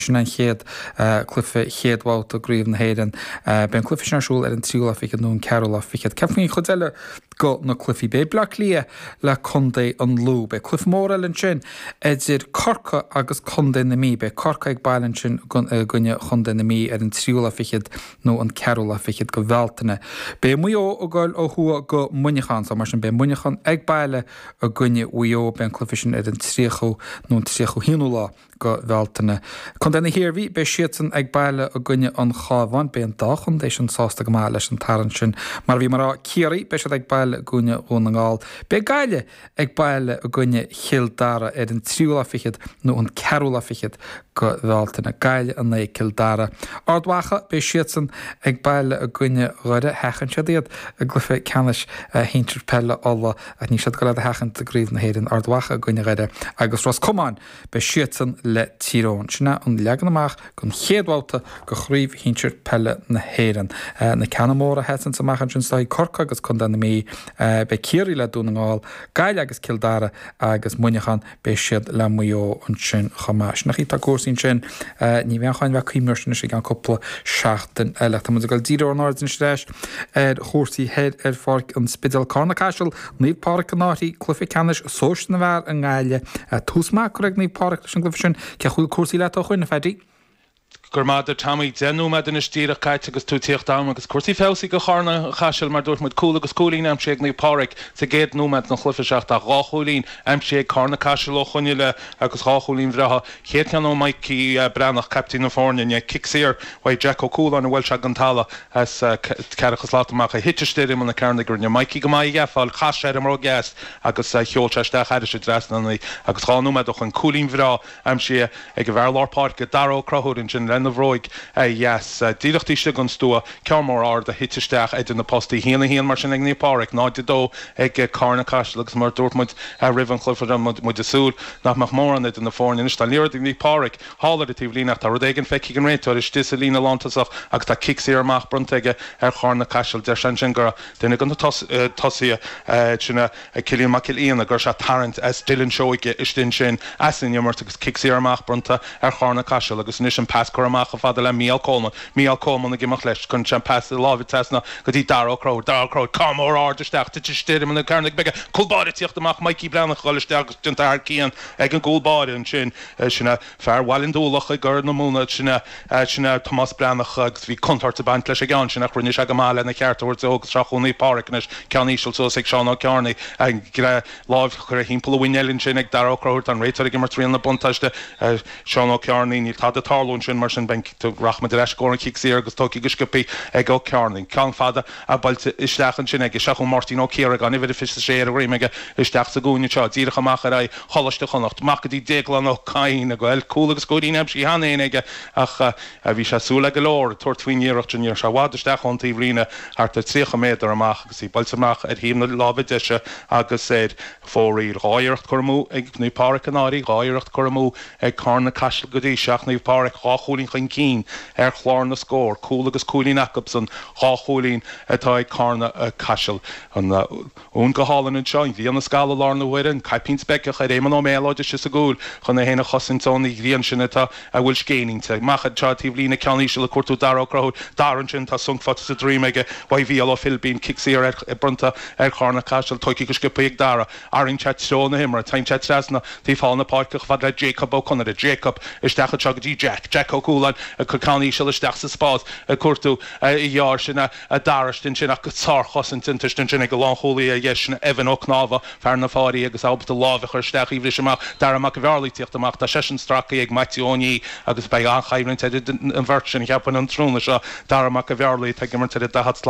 Sin an chéad cluife chéad bhabhta go Chraobh na hÉireann. Beidh an cluife sin ar siúl ar an 3ú lá fichead nó an 4ú lá fichead. Cad faoin chuid eile go na cluifí? Beidh Bleá Cliath le Condae an Lú. Beidh cluife mór eile ansin idir Corcaigh agus Condae na Mí. Beidh Corcaigh ag baile ansin i gcoinne Chondae na Mí ar an 3ú lá fichead nó an 4ú lá fichead go Bhealtaine. Beidh Maigh Eo ag dul ó thuaidh go Muineachán so mar sin beidh Muineachán ag baile i gcoinne Mhaigh Eo. Beidh an cluife sin ar an 30ú nó an 31ú lá. go Bhealtaine. Contae na hIarmhí, beidh siadsan ag baile i gcoinne an Chábháin. Beidh an dá chontae sin sásta go maith leis an tarraingt sin. Mar a bhí mé a rá, Ciarraí, beidh siad ag baile i gcoinne Dhún na nGall. Beidh Gaillimh ag baile i gcoinne Chill Dara ar an tríú lá fichead nó an ceathrú lá fichead go Bhealtaine. Gaillimh in aghaidh Cill Dara. Ard Mhacha, beidh siadsan ag baile i gcoinne Dhoire. Sheachain siad iad i gcluiche ceannais shinsir peile Uladh ach níl siad ag dul iad a sheachaint i gCraobh na hÉireann. Ard Mhacha i gcoinne Dhoire agus Ros Comáin. Beidh siadsan le Tír Eoghain. Sin é an leagan amach don chéad bhabhta de Chraobh Shinsir Peile na hÉireann. Na ceanna móra a sheasanns amach ansin, is dóichí, Corcaigh agus contae na Mí. Beidh Ciarraí le Dún na nGall, Gaillimh agus Cill Dara agus Muineachán, beidh siad le Maigh Eo ansin chomh maith. Sin an chaoi atá cúrsaí ansin. Ní bheidh an cháin bheith ag cuimhniú air sin anois i gceann cúpla seachtain eile. Tá muid ag dul ag díriú ár n-aird anois ar ais ar chúrsaí thoir ar Pháirc an Spidéil. Cárna-Caiseal Naomh Páraic an Fhairche, cluife ceannais Sóisir na bhfear i nGaillimh. Tús maith curtha ag Naomh Páraic leis an gcluife sin. Cén chaoi a bhfuil cúrsaí leat ó shoin, a Phaddy? Go raibh maith agat a Tommy. Deich nóiméad anois díreach caite agus tú ag tíocht agam agus cúrsaí feabhsaithe do Chárna Caiseal mar dúirt muid. Cúl agus cúilín aimsithe ag Naomh Páraic sa gcéad nóiméad den chluife seo ach dhá chúilín aimsithe ag Cárna Caiseal ó shoin i leith agus dhá chúilín bhreátha. Chéad cheann ó Mikey Breathnach, caiptín na foirne inniu. Cic saor uaidh Jack Ó Cualáin a bhuail sé den talamh as ceathracha slat amach a thit istigh ar imeall na cearnóige, rinne Mikey go maith í a ghabháil. Chas sé ar an mbróg dheas agus sheol sé isteach thairis an trasnán í agus dhá nóiméad ó shoin cúilín bhreá aimsithe ag an bhfear lár páirce Dara Ó Conchúir ansin lena bhróig dheas. Díreach taobh istigh den stua Ceann mór ard a thit isteach idir na postaí. Haon a haon mar sin ag Naomh Pádraig, 0-2 ag Carna Caiseal agus mar a dúirt muid roimh an chluiche bhí muid ag súil nach mbeadh mórán idir na foirne. Anois tá an liathróid ag Naomh Pádraig thall ar an taobh líne ach tá rud éigin feicthe ag an réiteoir istigh sa líne lántosach agus tá cic saor amach bronnta aige ar Charna Caiseal. Deir sé ansin gur duine de na tosaithe sin a Ag Cillian Mac Gil Fhiona go raibh sé ag tarraingt as Dylan Seoige istigh ansin, as an imirt agus cic saor amach bronnta ar Chárna Caiseal agus anois an pas curtha amach chomh fada le Mícheál Coleman, Mícheál Coleman ag imeacht leis, cuireann sé an pas láimhe trasna go dtí Dara Ó Conchúir, Dara Ó Conchúir, ceann mór ard isteach, titeann sé ar imeall na cearnóige bige, cúl báire ag tíocht amach, Mikey Breathnach ag dhul isteach agus déanta thar cionn ag an gcúl báire ansin, sin é. Fear Bhaile an Dúlach i gCorr na Móna sin é Tomás Breathnach agus bhí contabhairt ag baint leis an gceann sin ach rinne sé go maith lena cheart a thabhairt dó agus seo chugainn Naomh Pádhraic anois, ceann íseal suas ag Seán Ó Cearnaigh, lámh curtha timpeall a mhuinéil ansin ag Daragh Ó Conchúir, tá an réiteoir ag imirt riail na buntáiste ar Sheán Ó Cearnaigh, níl tada ag tarlú ansin mar sin rachaimid ar ais i gcóir an chic saor agus tógtha go sciopthaí ag Ó Cearnaigh, ceann fada. buailte isteach ansin aige. Seo chugainn Máirtín Ó Ciaragáin, uimhir a 26 ar a dhroim aige, isteach sa gcúinne seo, díreach amach ar aghaidh Choláiste Chonnacht. Amach go dtí Déaglán Ó Cadhain a bhfuil, cúl agus cúilín aimsithe cheana féin aige, ach bhí sé súileach go leor ag tabhairt faoin iarracht sin. Ní raibh sé i bhfad isteach ón taobhlíne, thart ar tríocha méadar amach agus í buailte amach ar thaobh na láimhe deise agus ar fóraoil. Dhá iarracht curtha amú ag Naomh Páraic An Fhairche, dhá iarracht curtha amú ag Carna Caiseal go dtí seo ach Naomh Páraic dhá chúilín chun cinn ar chlár na scór, cúl agus cúilín acubsan, Dhá chúilín atá ag Cárna Caiseal. An uain go hálainn anseo, an ghrian ag scaladh i láthair na huaire, an caipín speiceach ar Éamonn Ó Méalóid istigh sa gcúl chun é féin a chosaint ón ghrian sin atá a bhfuil scéin inti amach anseo taobhlíne ceann íseal ag cuartú Dara Ó Conchúir. Dara ansin tá sonc faighte sa droim aige uaidh Mhícheál Mac Philibín, cic saor bronnta ar Chárna Caiseal, tógtha go sciopthaí ag Dara. Athraíonn sé treo na himeartha. Téann sé trasna taobh thall na páirce chomh fada le Jacob Ó Conaire. Jacob, isteach anseo go dtí Jack. Jack Ó Cualáin ag cur ceann íseal isteach sa spás ag cuartú a dheartháir. Sin é Dara istigh ansin ach sárchosaint déanta istigh ansin ag an lánchúlaí ar dheis, sin Evan Ó Cnámha, fear na Fairche agus ábalta lámh a chur isteach í a bhriseadh amach. Darragh Mac an Bhearlaigh ag tíocht amach. Tá seisean stráctha ag Maitiú Ó Niadh agus beidh an-choimhlint idir an bheirt sin, cheapfainn, an tráthnóna seo. Darragh Mac an Bhearlaigh atá ag imirt ar an daichead slat.